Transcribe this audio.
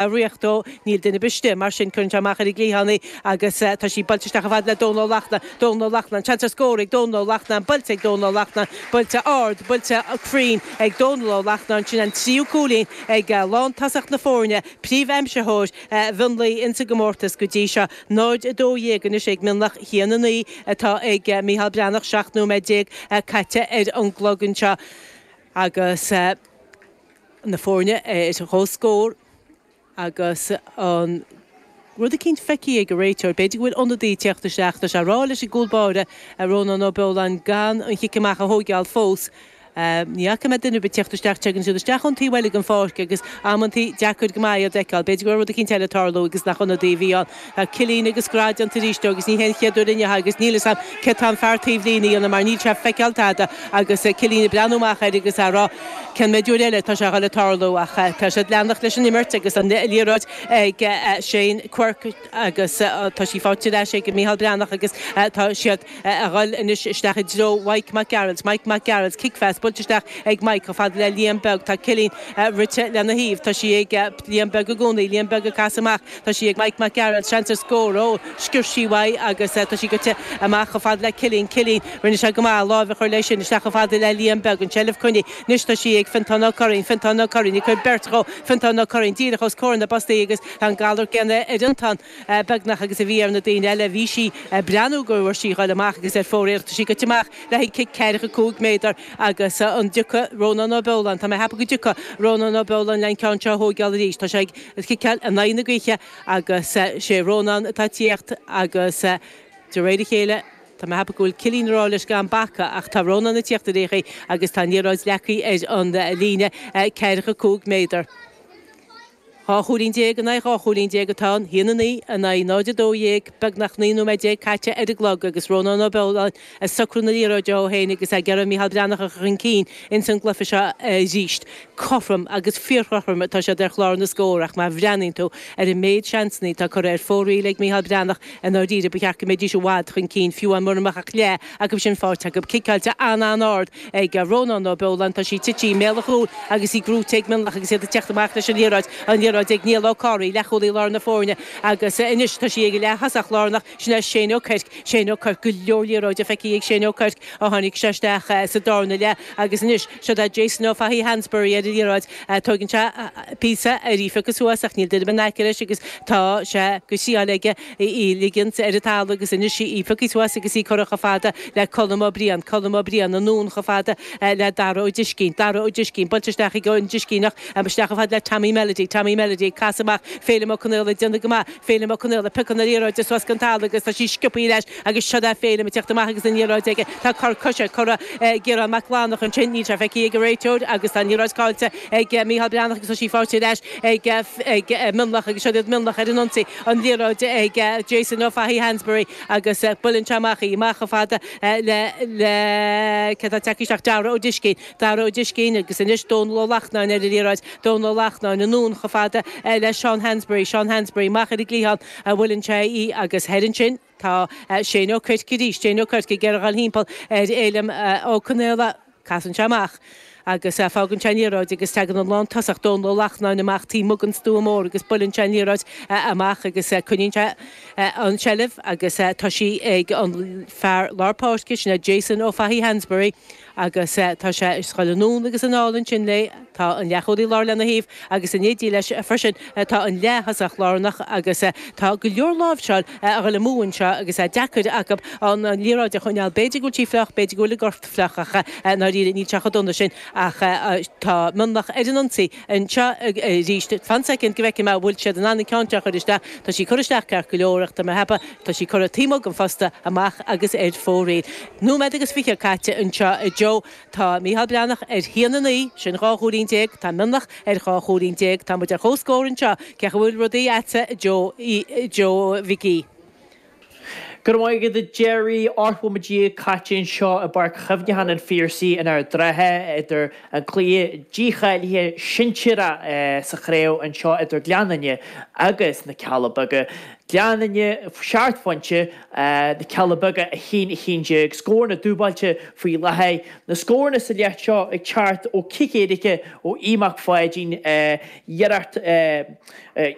a riocht dó. Níl duine ar bith istigh, mar sin, cuireann sé amach ar an gcliathán í agus tá sí buailte isteach chomh fada le Dónall Ó Lachtna. Dónall Ó Lachtna, An seans ar scór ag Dónall Ó Lachtna, buailte ag Dónall Ó Lachtna, buailte ard, buailte cruinn ag Dónall Ó Lachtna, agus sin an tríú cúilín ag lántosach na foirne, príomhaimsitheoir Mhionlaigh in sa gcomórtas go dtí seo. 0, 12 anois ag Mionlach, 1, 9 atá ag Micheál Breathnach, 17 nóiméad caite ar an gclog anseo agus. na foirne ar comhscór agus an rud eicínt feicthe ag an réiteoir. B'fhéidir go bhfuil ionadaí ag tíocht isteach. Tá sé ag rá leis an gcúl báire, Rónán Ó Beoláin, gan an chic amach a thóigeáil fós. Ní fhaca mé duine ar bith ag tíocht isteach. Tagann siad isteach ón taobh eile den pháirc agus amantaí deacair go maith iad a fheiceáil. B'fhéidir go raibh rud eicínt eile ag tarlú agus nach ionadaí a bhí ann. Tá Cillín agus grá déanta arís dó, agus ní hé an chéad uair inniu, agus níl 'fhios a'm céard tá an fear taobhlíne a dhéanamh mar níl sé ag feiceáil tada, agus Cillín ag breathnú amach air agus á rá cén méid uair eile atá sé a dhul ag tarlú. Ach tá sé ag leanacht leis an imirt agus an liathróid ag Shane Quirke agus tá sí faighte ar ais ag Micheál Breathnach agus tá siad a dhul anois isteach i dtreo Mhike Mac Gearailt. Mike Mac Gearailt, cicphas buailte isteach ag Mike chomh fada le Liam Beag, tá Cillín rite lena thaobh, tá sí ag Liam Beag i gcónaí, Liam Beag ag casadh amach, Tá sí ag Mike Mac Gearailt, seans ar scór, ó, sciorr sí uaidh agus tá sí goite amach chomh fada le Cillín, Cillín, rinne sé go maith láimh a chur leis sin, isteach chomh fada le Liam Beag, an tseilbh coinnithe, anois tá sí ag Fiontán Ó Curraoin, Fiontán Ó Curraoin, ag cur beirt dhó, Fiontán Ó Curraoin, díreach os comhair na bpostaí agus tá an galar céanna ar Fhiontán beagnach agus a bhí ar na daoine eile, bhí sí ag breathnú go raibh sí ag dul amach agus ar fóraoil, ach tá sí goite amach le haghaidh cic ceathracha cúig méadar agus an dtiocfaidh Rónán Ó Beoláin, tá mé ag ceapadh go dtiocfaidh Rónán Ó Beoláin le an ceann seo a thóigeáil arís, tá sé ag. ag ciceáil in aghaidh na gaoithe agus sé Rónán atá ag tíocht agus de réir a chéile tá mé ag ceapadh go bhfuil Cillín ag rá leis gan bacadh ach tá Rónán ag tíocht ar aon chaoi agus tá an liathróid leagtha ar an líne ceathracha cúig méadar. Dhá chúilín déag in aghaidh dhá chúilín déag atá ann, haon a naoi in aghaidh 0 12, beagnach naoi nóiméad déag caite ar an gclog agus Rónán Ó Beoláin ag socrú na liathróide dó féin agus é ag iarraidh Micheál Breathnach a chur chun cinn ins an gcluiche seo arís. Cothrom agus fíorchothrom atá siad ar chlár na scór ach má bhreathnaíonn tú ar an méid seansanna atá curtha ar fóraoil ag Micheál Breathnach i ndáiríre ba cheart go mbeidís i bhfad chun cinn fiú mura mbeadh ach leath acu sin faighte acu. Ciceáilte an-an-ard ag Rónán Ó Beoláin, tá sí tite i mbéal an chúil agus í gnóite ag Mionlach agus iad ag teacht amach leis an liathróid. An liathróid ag Niall Ó Corraí, leathchúlaí lár na foirne, agus anois tá sí ag an leath thosach lárnach. Sin é Shane Ó Cuirc. Shane Ó Cuirc, go leor liathróide feicthe ag Shane Ó Cuirc ó tháinig sé isteach sa darna leath agus anois, siod é Jason Ó Fathaigh-Hansbury ar an liathróid, tóigeann sé píosa air í a phiocadh suas ach níl duine in aice leis agus tá sé go síáin aige í ligeant ar an talamh agus anois í a phiocadh suas agus í curtha chomh fada le Colm Ó Briain. Colm Ó Briain anonn chomh fada le Dara Ó Discín. Dara Ó Discín, buailte isteach ag an Discíneach, isteach chomh fada le Tommy Melody. Tommy Melody ag casadh amach, Féilim Ó Conaola ag déanamh go maith. Féilim Ó Conaola, piocann an liathróid suas den talamh agus tá sí sciobtha ar ais agus seod é Féilim ag teacht amach agus an liathróid aige. Tá cor coise curtha ag Ciarán Mac Lánach ansin, níl sé feicthe ag an réiteoir agus tá an liathróid caillte ag Mícheál Breathnach agus tá sí faighte ar ais ag Mionlach agus seod iad Mionlach ar an ionsaí, an liathróid ag Jason Ó Fathaigh Hansbury agus buileann sé amach í, amach chomh fada le, le, cé atá ag teacht isteach, Dara Ó Discín. Dara Ó Discín, agus anois Dónall Ó Lachtnáin ar an liathróid, Dónall Ó Lachtnáin, anonn chomh fada le Seán Hansbury, Seán Hansbury, amach ar an gcliathán a bhuileann sé í agus thoir ansin tá Shane Ó Cuirc arís, Shane Ó Cuirc ag iarraidh a ghoil timpeall ar Fhéilim Ó Conaola, casann sé amach agus fágann sé an liathróid agus teagann an lántosach Dónall Ó Lachtnáin amach taobh amuigh den stua mór agus buileann sé an liathróid amach agus coinníonn sé an tseilbh agus tá sí ag an fear lár páirce, sin é Jason Ó Fathaigh Hansbury. Agus tá sí scaoilte anonn agus anall ansin léi tá an leathchúlaí láir lena thaobh agus in éindí leis freisin tá an leath-thosach lárnach agus tá go leor láimhseáil a dhul amú anseo agus é deacair acu an liathróid a choinneáil. B'fhéidir go bhfuil sí fliuch, b'fhéidir go bhfuil a gcorp fliuch ach i ndáiríre níl sé chomh dona sin ach tá Mionlach ar an ionsaí anseo arís. Fan soicind go bhfeicfidh mé an bhfuil siad in ann an ceann seo a chur isteach. Tá sí curtha isteach ceart go leor ach tá mé ag ceapadh Tá sí curtha taobh amuigh den phosta, amach agus ar fóraoil. Nóiméad agus fiche caite anseo a Joe. Tá Mícheál Breathnach ar a haon a naoi, sin dhá chúilín déag, tá Mionlach ar dhá chúilín déag, táimid ar chomhscór anseo. Cén chaoi a bhfuil rudaí agatsa a Joe Mhicí? Go raibh maith agat a Gerry. Ocht nóiméad déag caite anseo i bPáirc Chuimhneacháin an Phiarsaigh in Ard an Rátha idir an cluiche dícháilithe sinsearach sa chraobh anseo idir Gleann Fhinne agus na Cealla Beaga. Gleann Fhinne seacht bpointe na Cealla Beaga 1, 11, scór na dúbailte faoi láthair. Na scóranna sa leath seo ag teacht ó chic éirice ó Aodh Mac Pháidín, iarracht